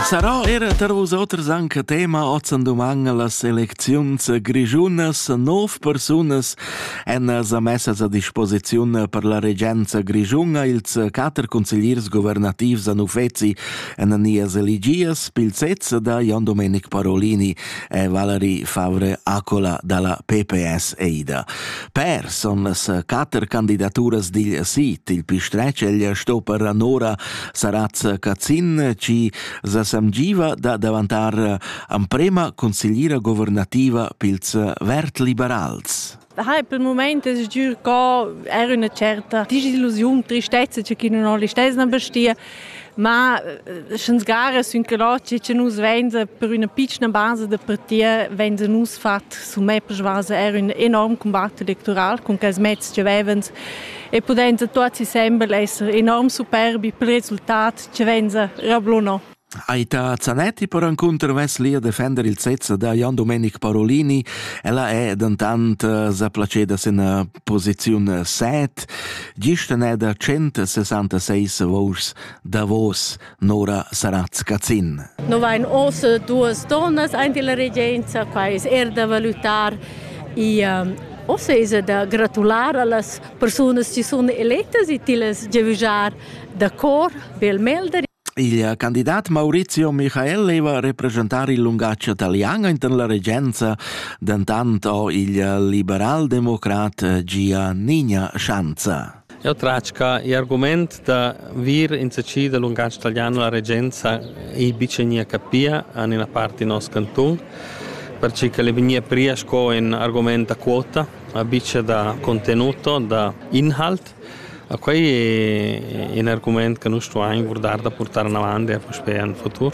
Sarà era tar vusoters anche tema oz en doman las elecziuns grigiunas. Nov persunas èn sa messas a disposiziun per la regenza grigiuna. Ils quatter consigliers governativs a Nufezi èn Nias Eligias Pilzez da Jan Domenic Parolini e Valerie Favre Acola dalla PPS Eida. Per son las quatter candidaturas digl sit, il pistretsch, ella sto per anora Sarazza Cazin chi sa samgiva da davantar amprema consigliera governativa pils vertliberals. Daher per il moment es giür co er üna certa disillusiun, tristezza che chi nun ho listess na bestia, ma eh, sch'ns gara sün que che che nus venza per üna piccina basa da partia venza nus fat su me per vasa er un enorm combatt electoral con quels mezs che vevens e pudend tuot insembel esser enorm superbi pel resultat chi vainsa rablunò. Aita Zanetti per encunter veslia defender il sezza da Jan Domenic Parolini. Ella è dentant eh, sa placeda sin eh, posiziun 7, gista ne da 166 vouchs davos Nora Saratz-Cazin. No vain ossa duas donnas aint illa regenza, qua es er da valutar. E um, ossa es da gratular a las persunas chi sun elettas e tillas giavüjar da cor bel melder. Il candidat Maurizio Michael leva representar il lungatg italian inten la regenza, dentant ho il liberal-democrat Gia Nigna Schanza. Eu tratg cha il argumaint da vir insatgi dal lungatg talian a la regenza ei bic gnir capia en ina part in nos cantun, perche ch'el ei vegnia pria sco ün argumaint da quota, a bic da contenuto, da inhalt. A quei è ün argumaint che nus stuain guardar da portar anavant e puspei en futur.